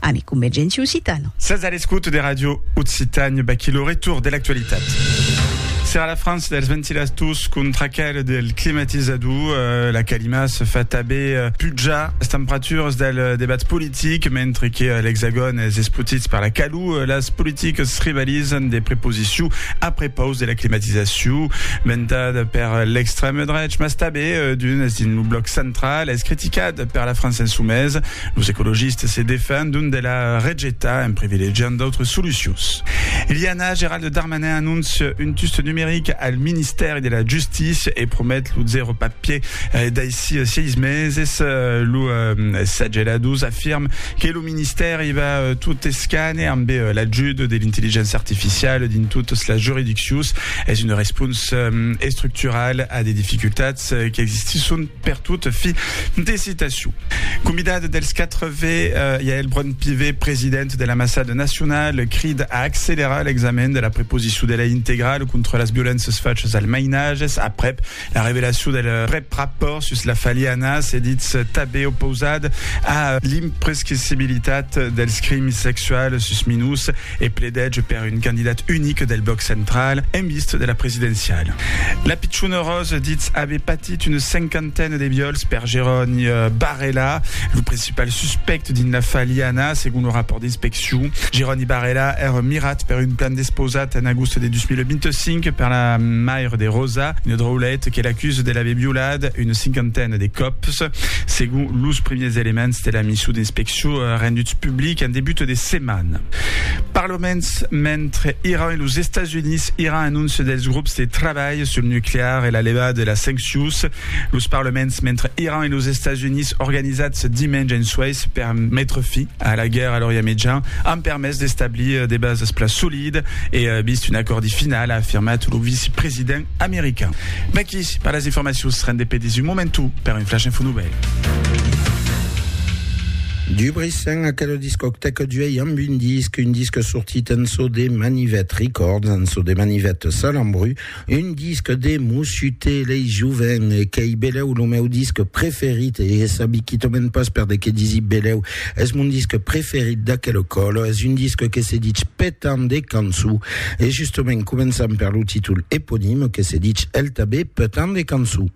Ami Convergenti Occitano. Sètz a l'escouta de Ràdio Occitània, vaquí lo retorn de l'actualitat. Serà la frança dels ventilators contra aquel del climatizador, eh, la calima se fa tanben eh, pujar las temperaturas del eh, debat politic, mentre que eh, l'Hexagòn es espotit per la calor, eh, las politicas rivalizan de preposició a prepaus de la climatizacion, ventada per eh, l'extrèm drech, mas tanben eh, d'unes dins lo bloc central, es criticat per la França Insumesa, Los ecologistes se defendon de la rejetar en privilegiant d'autres solucions. Iliana, Gerald Darmanin anóncia un tust numeric al Ministèri de la Justícia e promet lo zèro papier daicí 6 meses. Lo Sageladus afirm que lo Ministèri va tot escane amb l'ajut de l'intelligéncia artificiala dins totas las juridiccions. Es una responsa estructurala a de dificultats qu'existisson Pertot, fi de citacion. Convidat dels 4 V, Yaël Braun-Pivet, president de l'Ambassade nationale, crida a accelerar l'examen de la preposició de lei integrale contra las violéncias fachas als mainatges aprèp la revelacion del prèp rapòrt sus la faliana, se ditz tanben opausat a l'imprescrissibilitat dels crims sexuals sus minors. e pledège per un candidat unic del blòc central en vist de la presidenciala. La pichona Rose ditz aver patit una cinquantena de viòls per Jeroni Barrela, lo principal suspèct dins l'afar Liana, segon lo rapòrt d'inspeccion. Jeroni Barrela èra mirat per un plan despausat en agost de 2025 per la maire de Rosa, una draulet que l'acusa de l'aver violat una cinquantena de còps, segon los primièrs elements de la mission d'inspeccion. Çò a rendut public en debut de setmana. Per lo mens, mentre Iran e los Estats Units iran anóncia dels grops de trabalh sul nuclear e la levada de las sanccions, los parlaments mentre Iran e los Estats Units organizats dimenge en Suèis per metre fi a la guèrra a l'Orient Mejan an permés d'establir de basas pla solidas e vist un acòrdi final, a afirmat lo vicepresident. American. D'aquí per las informacions rende pedis un momentu per un flash info novèl. Dubricen aquela discotèca d'uèi amb un disc, un disc sortit en so de Manivet Records, en so de Manivet Salambru, un disc de Mossute lei joven, qu'ei belèu lo meu disc preferit e sabi quitament pas per de que disi belèu, Es mon disque preferit d'aquel ecòla, es un disque que se ditz Petant de canço, e justament començam per lo títol eponime que se ditz el tanben Petant de canço.